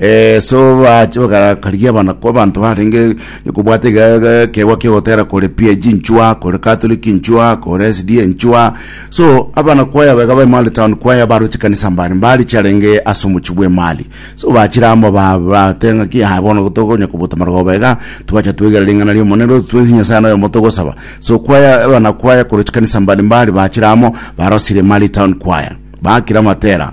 Ee, so bache bakarakaria abanako abanto barenge kobwata ekeegwa kiogotera kore PAG nchwa kore Catholic nchwa kore SDA nchwa so abana kwaya baiga ba Emali Town kwaya baro chikanisa mbare mbari chiarenge ase omochi bwa Emali so bachire amo ba- bate ng'aki ah bono tokonya kobota marogo baiga twacha twegera ring'ana ria Omonene rosi twensi Nyasae ane oyomo togosaba so kwaya abana kwaya kore chikanisa mbari mbari bachire amo barosire Emali Town kwaya bakira matera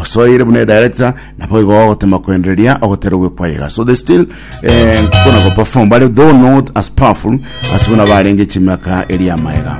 osoire buna director nabo igo ogotema kwendereria ogotera ogwekwayega so they still eh, kona go perform bare though not as powerful as buna barenge chimaka eria maega